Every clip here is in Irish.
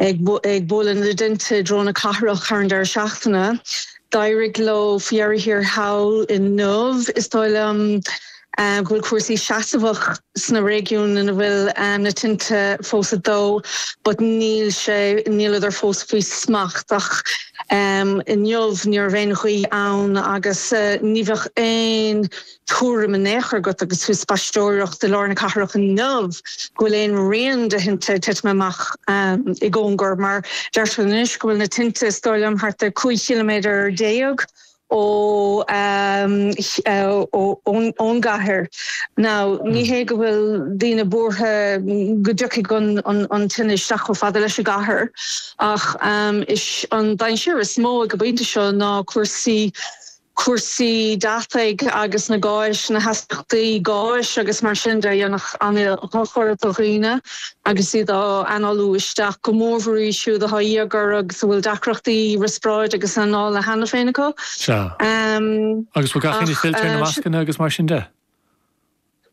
Ag bualadh na dtinte i dtreo na cathrach thar an deireadh seachtaine, d'éirigh leo faoi dheireadh thiar thall inniu, is dóigh liom, go bhfuil cúrsaí seasmhach sna réigiúin ina bhfuil na tinte fós ag dó but níl sé, níleadar fós faoi smacht ach inniu ní raibh aon ghaoth ann agus ní bheadh aon tuairim in aon chor agat agus tú ag spaisteoireacht i lár na cathrach inniu go bhfuil aon rian de thinte ag titim amach i gcóngar mar deirtear anois go bhfuil na tinte is dóigh liom thart ar 15 chiliméadar ón gcathair. Now ní hé go bhfuil daoine buartha go dtiocfaidh an tine isteach chomh fada leis an gcathair ach is an dainséar is mó ag an bpointe seo ná cúrsaí cúrsaí deataigh agus na gáis, na hastaíochtaí gáis agus mar sin de a dhéanfadh an-dhochar do dhaoine agus iad á análú isteach, go mórmhór iad siúd atá íogair agus a bhfuil deacrachtaí riospráide agus anála cheana féin acu. Sea. Agus bhfuil gach éinne fillte ar na mascanna agus mar sin de?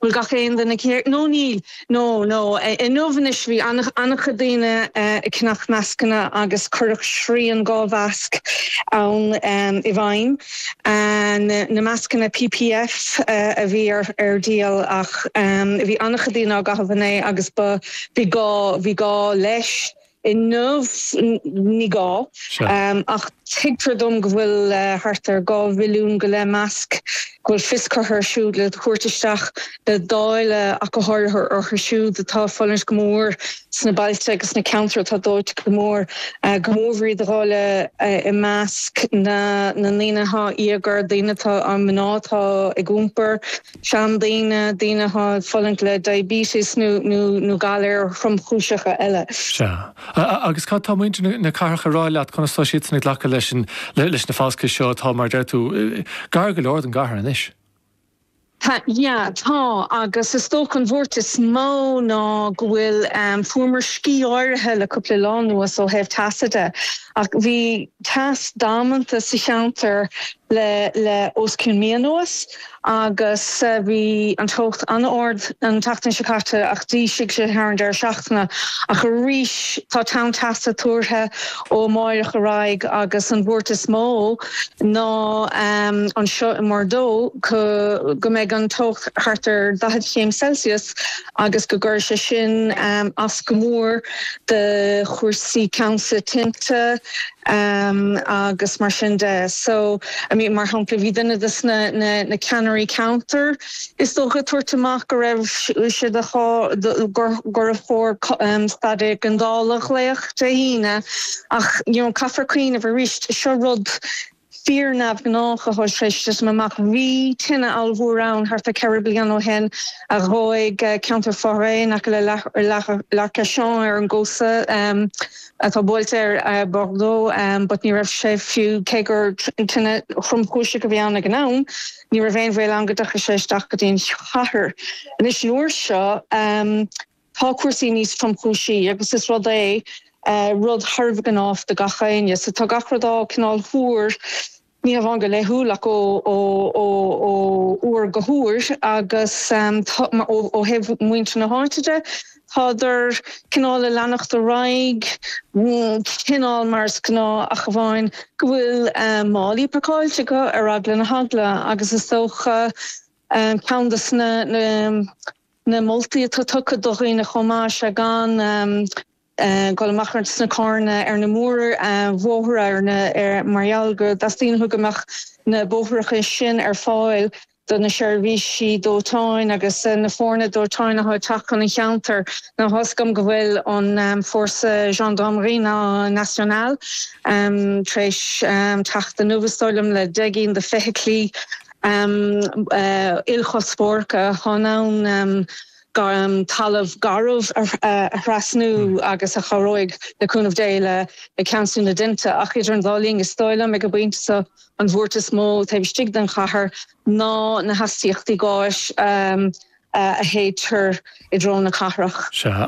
An bhfuil gach aon duine céir? No níl. No, no. Inniu anois bhí an-chuid daoine ag ceannach mascanna agus cuireadh srian dhá mhasc ann i bhfeidhm. Na mascanna PPF a bhí ar díol ach bhí an-chuid daoine á gcaitheamh inné agus bhí gá, bhí gá leis. inniu, ní gá. Ach tuigtear dom go bhfuil thart ar dhá mhilliún go leith masc, go bhfuil fios curtha ar siúd le tabhairt isteach le dáileadh ach go háirithe orthu siúd atá ag fulaingt go mór sna bailte agus sna ceantair atá dóite go mór, go mór iad a dháileadh i measc na ndaoine atá íogair, daoine atá, mná atá ag iompar. seandaoine, daoine atá ag fulaingt le diabetes nó galair thromchúiseacha eile. Sea. Agus cad tá muintir na cathrach ag rá leat, conas tá siadsan ag glacadh leis na falscaithe seo atá, mar a deir tú, gar go leor don gcathair anois? Sea, tá, agus is dócha an bhuairt is mó ná go bhfuil, fuaireamar scíth áirithe le cúpla lá anuas ó thaobh teasa de ach bhí, teas damanta sa cheantar le os cionn mí anuas agus bhí an teocht an-ard an tseachtain seo caite ach d'ísligh sé thar an deireadh seachtaine ach arís tá tonn teasa tuartha ó amáireach ar aghaidh agus an bhuairt is mó ná anseo i mBordeaux go mbeidh an teocht thart ar 40 chéim Celsius agus go gcuirfidh sé sin as go mór do chúrsaí ceansú tinte agus mar sin de. So I mean mar shampla bhí duine de na de sna ceannairí ceantair is dócha ag tabhairt amach go raibh sé de gur chóir staid éigeandála a ghlaoch Dé hAoine ach you know caithfear cuimhneamh arís seo rud fíor-neamhghnách a thug ceist amach bhí tine ollmhór ann thart ar cheithre bliana ó shin a dhóigh ceantar foraoise in aice le Arcachon ar an gcósta atá buailte ar Bordeaux but ní raibh sé fiú cé gur tine thromchúiseach a bhí ann ag an am ní raibh aon bhaol ann go dtiocfadh sé isteach go dtí an chathair. Anois an uair seo Tá cúrsaí níos tromchúisí agus is rud é rud fíor-neamhghnách do gach éinne. So tá gach rud á cineál tuar, ní hamháin go laethúil ach ó uair go huair agus ó thaobh muintir na háite de, tádar cineál ag leanacht ar aghaidh cineál mar is gnáth ach amháin go bhfuil málaí pacáilte acu ar eagla na heagla agus is dócha ceann dos na na moltaí atá tugtha do dhaoine chomh maith is ea gan dul amach ar sna carranna ar na mórbhóithre mar gheall go dteastaíonn go mbeadh na bóithreacha sin ar fáil do na seirbhísí dóiteáin agus na foirne dóiteáin atá ag teacht chun an cheantair. Ná tuigim go bhfuil an Force Gendarmerie Nationale tar éis teacht inniu is dóigh liom le deich gcinn de feithiclí ilchuspóireacha chun an talamh garbh a thrasnú agus a chabhróidh, le cúnamh Dé, le ceansú na dtinte. Ach idir an dá linn, is dóigh liom, ag an bpointe seo, an bhuairt is mó taobh istigh den chathair ná na hastaíochtaí gáis a shéidtear i dtreo na cathrach. Sea.